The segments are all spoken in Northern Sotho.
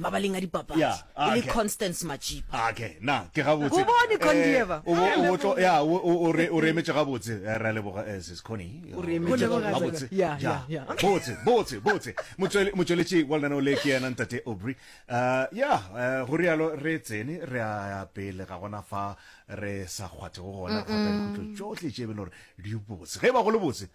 mabaleng a dipapadi yeah, ah, okay. e le constance machipa ah, okay. na ke gabotsebone condieva eh, o re emetše gabotse eh, ra leboga eh, sis coni gabotse botse botse motsweletši wa lenaneo le ke yena ntate obry ya go rialo re tsene re a pele ga gona fa re sa kgwathego gona kgwata mm. dikutlo tsotlhe tše e be le gore di botse ge e ba go le botse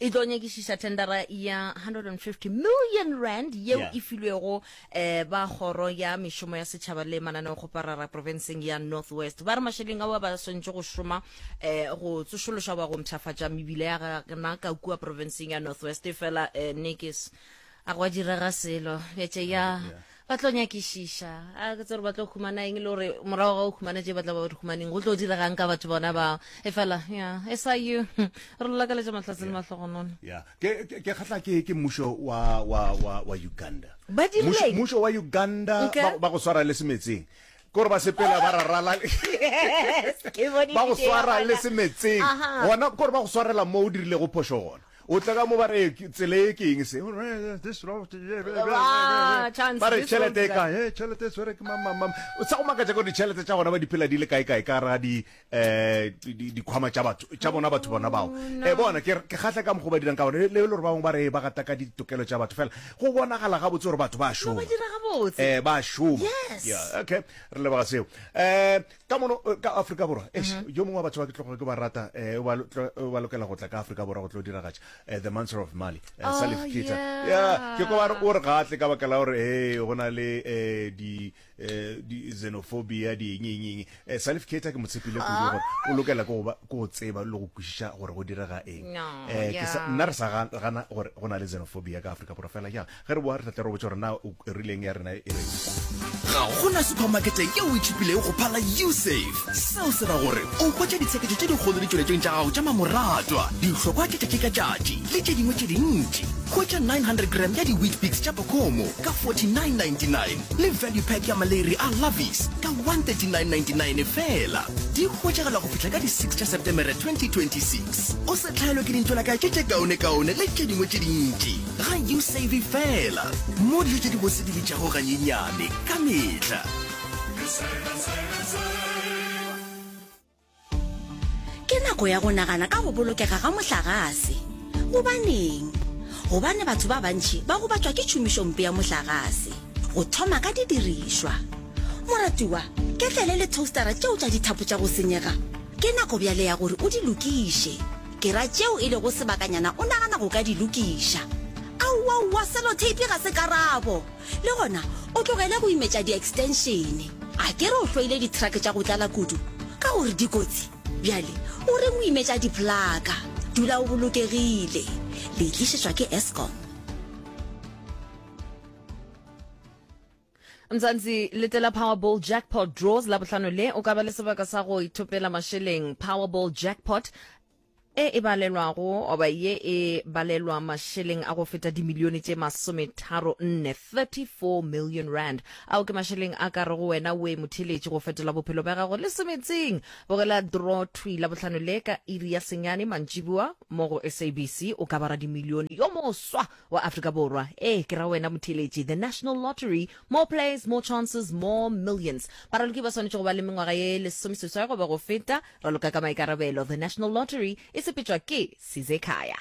e tlo nyakišiša tendera ya 150 million rand yeo Yeah. e filwego um ba kgoro ya mešomo ya setšhaba le mananeo go parara profenseng ya north west ba re mašeleng ao ba swantšhe go šoma um go tsošološa goba go mpšhafatša mebile ya gana ka kua profenseng ya north west e fela um nekes a go a direga selo bjatše ya ba tlo nyakišiša a ke tsere ba tlo humana eng le gore morago ga o humana tše ba tla ba di humaneng go tlo diregang ka batho bona bao e fela ya e sa you re lolakaletša mahlatse le mahlogonone ya ke ke- ke kgatla ke ke mmušo wa wa wa wa uganda Ba dirileng? Mmušo- mmušo wa uganda Okay. ba- ba go swara le semetseng ke gore ba sepela ba rarala Yes, ke bone ba go video ya swara bona. le semetseng Aha. gona ke gore ba go swarela mo o dirilego phošo gona O tla ka mo ba re, Tsela ye ke eng se? Ba re, Tšhelete e kae? He, tšhelete e tshwere ke mang-mang-mang. Sa go makatša ke gore ditšhelete tša gona ba di phela di le kae-kae ka gara di, um dikhwama tša batho, tša bona batho bona bao. E bona, ke re, ke kgahla ka mokgwa o ba dirang ka gona. Le gore ba bangwe ba re ba gataka ditokelo tša batho, fela go bonagala gabotse gore batho ba a šoma. E, ba a šoma. Ya, okay, re leboga seo. Um. ka mono eh, ka afrika borwa eh, mm -hmm. yo mongwe wa batho ba ke tlogo ke ba rata eh, o ba lokela go tla ka afrika borwa go tlo diragatša eh, the manser of mali eh, oh, salif kita yeah. yeah. ke ko bare o re ga tle ka baka la gore e go na le eh, di eh, di xenophobia di eng eng eng eh, salif kita ke motshepile kudu gore ah. o lokela ko go tseba le go kwešiša gore go direga eng no, eh, yeah. nna re sa gana gore go na le xenophobia ka afrika borwa fela jang Ge re boa re tla tla re botša gore na o rileng ya rena e reng. Ga go na supermakete yeo e tšhupilego go phala usafe. Seo se ra gore o hwetša ditsheketšo tše dikgolo ditšweletšong tša gago tša mamoratwa, dihlokwa tša tšatši ka tšatši le tše dingwe tše dintši. Hwetša 900 gram ya di-wheatbix tša pokomo ka 49.99 le value pack ya maleri a lovies ka 139.99 fela. Di hwetšagala go fihla ka di 6 tša Setemere 2026. O se hlaelwe ke dintšwelakae tše tše kaonekaone le tše dingwe tše dintši. Ga you save fela mo dilo tše di bose di bitšago ganyenyane ka mehla. Ke nako ya go nagana ka go bolokega ga mohlagase. Gobaneng? Gobane batho ba bantši ba gobatšwa ke tšhomišompe ya mohlagase, go thoma ka didirišwa. Moratiwa, ketlele le toastara tšeo tša dithapo tša go senyega ke nako bjale ya gore o di lokiše. Ke ra tšeo e lego sebakanyana o nagana go ka di lokiša. Aowaowa, seloteipi ga se karabo. Le gona, o tlogele go imetša di-extenšene. A ke re o hloile dithrake tša go tlala kudu ka gore di kotsi? Bjale o reng o imetša diplaka? Dula o bolokegile. Le itlišetšwa ke Eskom. Mzansi, letela Powerball Jackpot Draws la bohlano le. O ka ba le sebaka sa go ithopela mašeleng. Powerball Jackpot e e balelwago oba ye e balelwa mašeleng a go feta dimilione tše masometharo nne 34 million rand ao ke mašeleng a ka re go wena o e motheletše go fetola bophelo bja gago le semetseng bogela draw twi la bohlano le ka iri ya senyane mantšibua mo go sabc o ka bara dimilione yo moswa wa Afrika Borwa, ee, ke ra wena motheeletši, the National Lottery, more players, more chances, more millions. Baraloki ba swanetše go ba le mengwaga ye lesomeseswai goba go feta, raloka ka maikarabelo. The National Lottery e sepetšwa ke Sizekhaya.